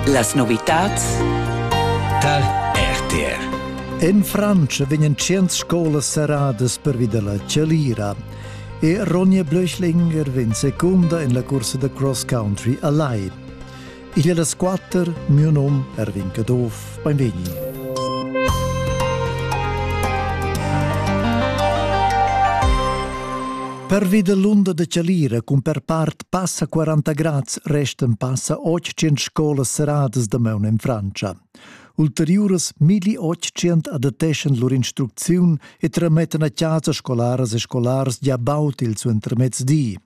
Las novitads tar RTR. In Franz vegnan tschient scolas serradas pervi dalla chalira e Ronja Blöchlinger vegn secunda en la cursa da cross country a Lai. Igl è las quatter, mio nom Erwin Caduff. Benvegni. Pervi dell'unda de Chalira cun per part passa 40 grads restan passa 800 scolas seradas da maun en Francia. Ulteriuras 1800 adatteschan lur instrucziun e tramettan a casa scolaras e scolars gia baut il suentermezdi.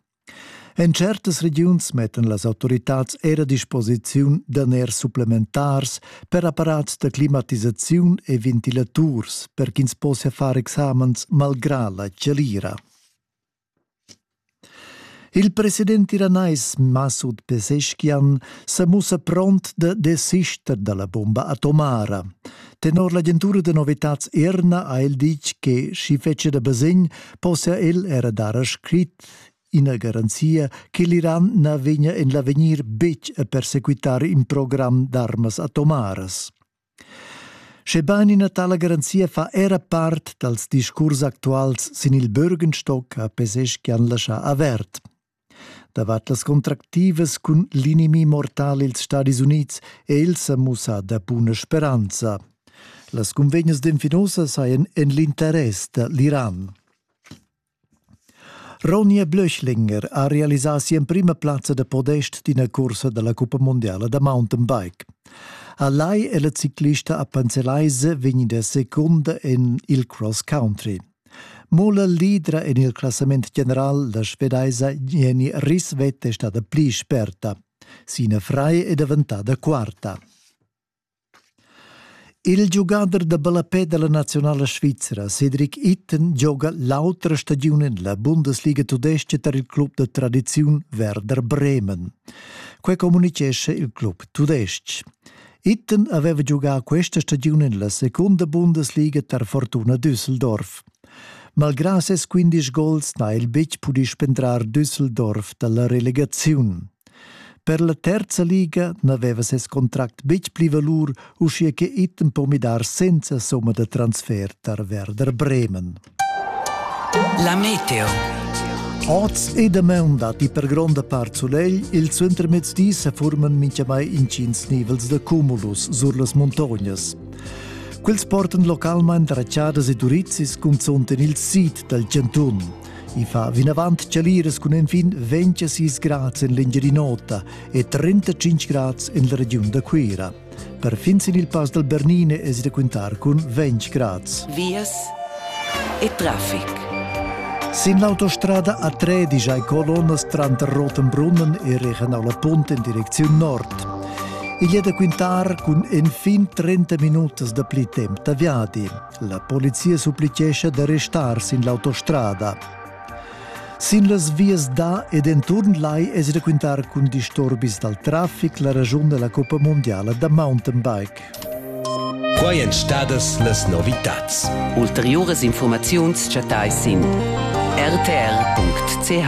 En certas regiuns mettan las autoritads er a disposiziun daners supplementars per apparats da climatisaziun e ventilaturs per ch'ins possia far examens malgrà la chalira. Il president iranais Masud Peseschkian sa mussa pront da desister dalla bomba atomara. Tenor l'agentura da novitads Erna ha el ditg che sch'i fetschia da basegn possia el era dar a scrit Ina garanzia che l'Iran na vegnia en l'avegnir betg a persequitar in program d'armas atomaras. Schebain ina tala garanzia fa era part dals discurs actuals sin il Bürgenstock, ha Peseschian laschà avert. Davart las contractivas cun l'inimi mortal ils Stadis Unids è el sa mussà da buna speranza. Las cunvegnas d'Enfinosa sajan en l'interess da l'Iran. Ronja Blöchlinger ha realisà si'emprima plazza da podest d'ina cursa da la cuppa mundiala da mountainbike. A Lai è la ciclista a Panzelaise vegnida secunda en il cross country. Mo la leadra en il classament general la svedaisa Jenny Risvet è stada pli sperta. Sina Frei è daventada quarta. Il giugader da ballapè dalla naziunala svizra Cedric Itten gioga l'autra stagiun en la Bundesliga tudestga tar il club da tradiziun Werder Bremen. Quei communicescha il club tudestg. Itten aveva giugà questa stagiun en la secunda Bundesliga tar Fortuna Düsseldorf. Malgrà ses quindisch gols n'ha el betg pudì spendrar Düsseldorf da la relegaziun. Per la terza liga n'aveva ses contract betg pli valur, uschia che Itten po midar senza somma da transfer tar Werder Bremen. La Meteo Oz e damaun datti per gronda part sulegl, il suentermezdi sa furman mintgamai intgins nivels da cumulus sur las muntognas. Quels portan localmain rachadas e durizis cunzont en il sid dal chantun. I fa vinavant chaliras cun enfin 26 grads en l'Engiadin'Ota e 35 grads en la regiun da Cuira. Per fin sin il pass dal Bernine es da quintar cun 20 grads. Vias e traffic. Sin l'autostrada a Tredisch hai colonnas tranter Rottenbrunnen e Regionala Punt in direcziun nord. Igl è da quintar cun enfin 30 minutas dapli temp da viadi. La polizia supplitgescha d'arrestar sin l'autostrada. Sin las vias da ed enturn lai es da quintar cun disturbis dal trafic la ragiun da la Coppa Mondiala da mountainbike. Qua èn stadas las novitads. Ulteriuras informaziuns chattais sin rtr.ch.